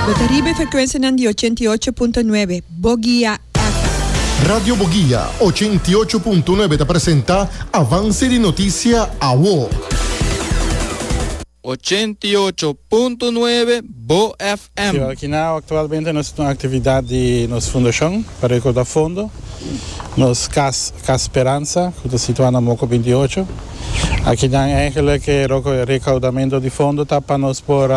Bo ta riba e frekuensianan di ochenta i ocho punto nuebe Bogia FM. Radio Bogia ochenta i ocho punto nuebe ta presenta Avance di Noticia Awo. Ochenta i ocho punto nuebe Bo FM. Ciudad Kinao, Actualmente nos ta den un actividad di nos fundacion pa recorda fondo nos cas Cas Speranza cu ta situa na Moco veintiucho. Aki nan ehemplo cu e recaudamento di fondo ta pa nos por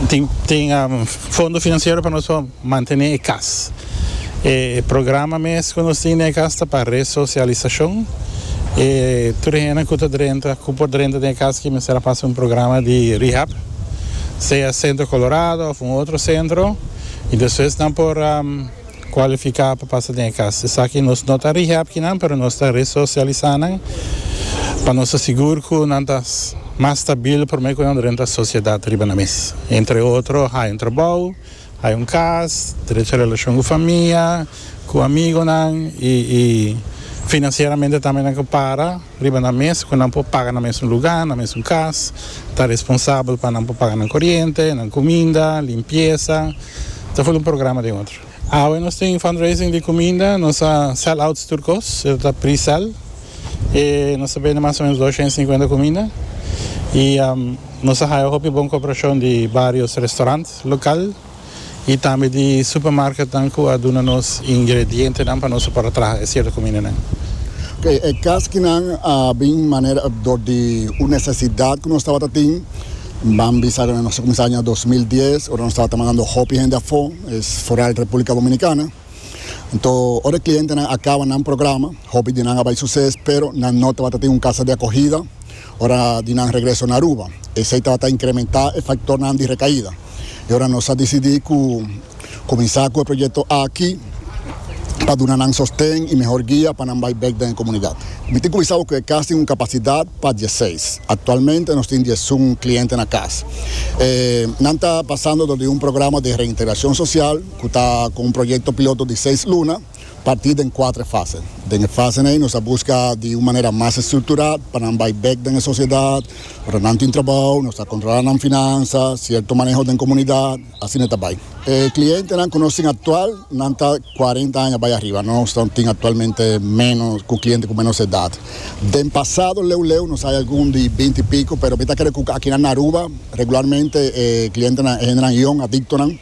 tin fondo financiero pa nos por mantene e cas. E programa mes cu nos tin den e cas ta pa resocialisacion. E tur e hendenan cu ta drenta, cu por drenta den e cas aki mester a pasa un programa di rehab, sea Centro Colorado of un otro centro y despues nan por. kualifiká pa pasa den e kas. Esaki nos no ta rehab kinan pero nos ta resosialisá nan pa nos ta sigur ku nan ta mas stabil promé ku nan ta renta sosiedat riba nan mes. Entre otro hai un trabou, hai un kas, drecha relashon ku famia, ku amigonan i finansieramente tambe nan ke para. Riba nan mes cu nan por paga nan mesun luga, nan mesun cas, ta responsabel pa nan por paga nan coriente, nan cuminda, limpieza, ta full un programa den otro. Awe nos tin fundraising di cuminda, nos a sell outs tur cos, e ta pre-sell, y nos ta bende mas o menos doscientos cincuenta cuminda, y nos a haya hopi bon cooperacion di varios restaurant local. y tambe di supermarketnan cu a duna nos ingredientenan pa nos a por a traha e cierto cumindanan. Oke, e caschinan a bin manera dor di un necesidad cu nos tabata tin. Ban bisa nos a cuminsa aña dos mil dies, ora nos tabata mandando hopi hende afo, foral Republica Dominicana. Anto ora e klientenan a kaba nan programa, hopi di nan a bai suses, pero nan no tabata tin un kasa di akogida ora di nan regreso na Aruba. Esei tabata inkrementá e faktornan di rekaida. I ora nos a disidí ku kuminsá ku e proyekto aki pa duna nan sosten i mehor guia pa nan bai bèk den e komunidat. Mi tin kuminsá abo ku e kas tin un kapasidat pa dieseis. Aktualmente nos tin diesun kliente na kas. Nan ta pasando dor di un programa di reintegrashon sosial. cu ta cu un proyecto piloto di seis luna, parti den cuatre fase. Den e fasen ey nos a busca di un manera mas estructura pa nan bay bek den e sociedad, ora nan tin trabao, nos ta controla nan finansa, cierto maneho den comunidad, asina ta bay. E clientenan cu nos tin actual, nan ta cuarenta aña bay ariba, nos ta tin actualmente meno cu cliente cu menos edad. Den pasado leu leu nos hay algun di binti y pico, pero mi ta cre cu aki na Aruba regularmente e clientenan e hendenan yong, adictonan.